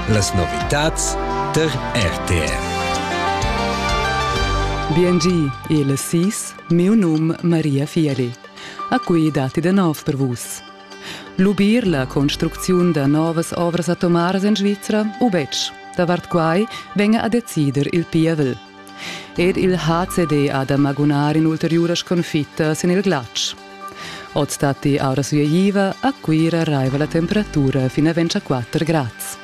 Las novitads tar RTR. BNG, il SIS, miu num Maria Fieri. A cui datti da nov per vus. Lubir la construcziun da novas ovras atomaras en Svizra u betg? Davart quai venga a decider il pievel. Er il HCD ha da magunar in'ulteriuras sconfitta sin il glatsch. Oz datti aura sueiva, a Cuira raiva la temperatura fin a 24 grads.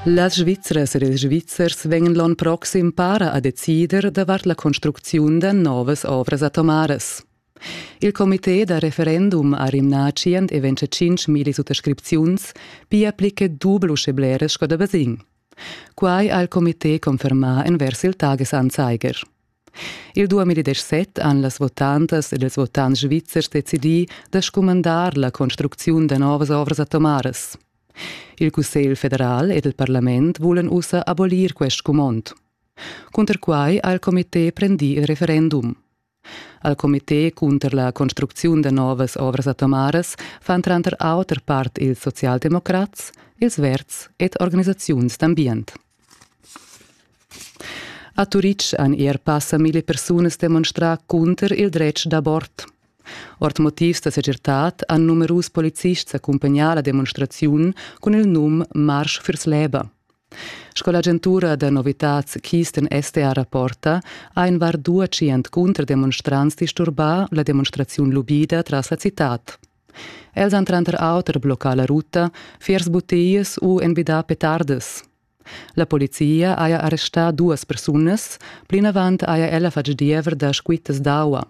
Las Svizzras ed ils Svizzers vegnan l'onn proxim para a decider davart la construcziun da novas ovras atomaras. Il comité da referendum ha rimnà tschient e ventgatschintgmilli suttascripziuns, pia pli che dubel uschè bleras sco da basegn. Quai ha il comité confermà envers il Tagesanzeiger. Il 2017 han las votantas ed ils votants svizzers decidì da scumandar la construcziun da novas ovras atomaras. Il Cussegl federal ed il parlament vulan ussa abolir quest scumond. Cunter quai ha il comité prendì il referendum. Al comité cunter la construcziun da novas ovras atomaras fan tranter auter part ils socialdemocrats, ils verds ed organisaziuns d'ambient. A Turitg han er passa mille persunas demonstrà cunter il dretg d'abort. Ord motivs da segirtad han numerus polizists accumpagnà la demonstraziun cun il num Marsch fürs Leben. Sco l'agentura da novitads Kisten STA rapporta, ha in var dua tschient cunterdemonstrants disturbà la demonstraziun lubida tras la citad. Els han tranter auter bloccà la ruta, fiers butias u envidà petardas. La polizia haja arrestà duas persunas, plinavant haja ella fatg diever da squittas d'aua.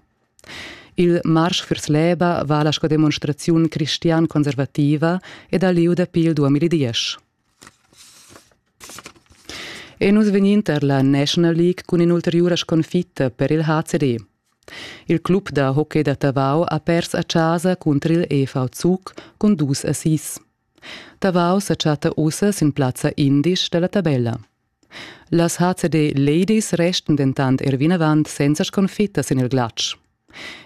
Il marsch vers l'Eba vala sco demonstraziun cristian-conservativa ed ha lieu dapi il 2010. E nus vegnin tar la National League cun in'ulteriura sconfitta per il HCD. Il club da hockey da Tavau ha pers a chasa cunter il EV Zug cun dus assists. Tavau sa chatta ussa sin plazza indisch dalla tabella. Las HCD Ladies restan dentant er vinavant senza sconfitta sin il glatsch.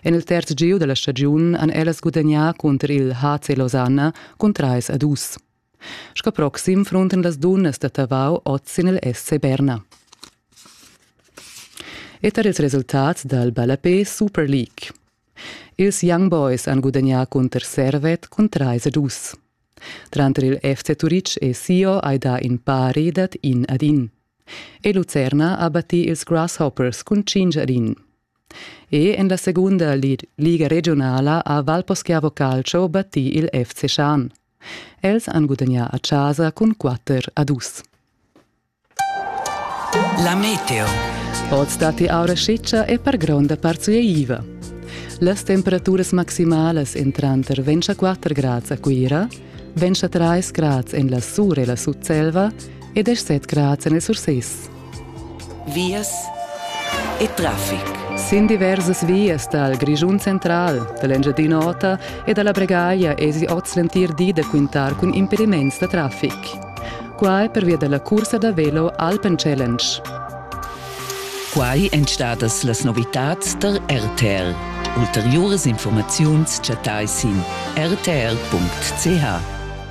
En il terz giu della stagiun han ellas gudagnà cunter il HC Losanna cun 3 a 2. Sco proxim fruntan las dunnas da Tavau oz sin il SC Berna. E tar ils resultats dal ballapé Super League. Ils Young Boys han gudagnà cunter Servet cun 3 ed dus. Tranter il FC Turitg e Sio hai dà in pari dad in ad in. E Lucerna ha battì ils Grasshoppers cun 5 ad in. E en la segunda liga regiunala ha Valposchiavo Calcio battì il FC Schan. Els han gudagnà a chasa cun quatter a dus. La meteo. Oz datti aura sciccia e per gronda part sueiva. Las temperaturas maximalas en tranter ventscha 4 grads a Cuira, ventscha 3 grads en la Sur e la Sutselva e 17 grads en il Surses. vias e traffic. Sin diversas vias dal Grischun central, da l'Engiadin'Ota e da la Bregaglia esi oz l'entir di da quintar cun impediments da traffic. Quai pervia da la cursa da velo Alpen Challenge. Quai èn stadas las novitads tar RTL. Ulteriuras informaziuns chattai sin rtl.ch.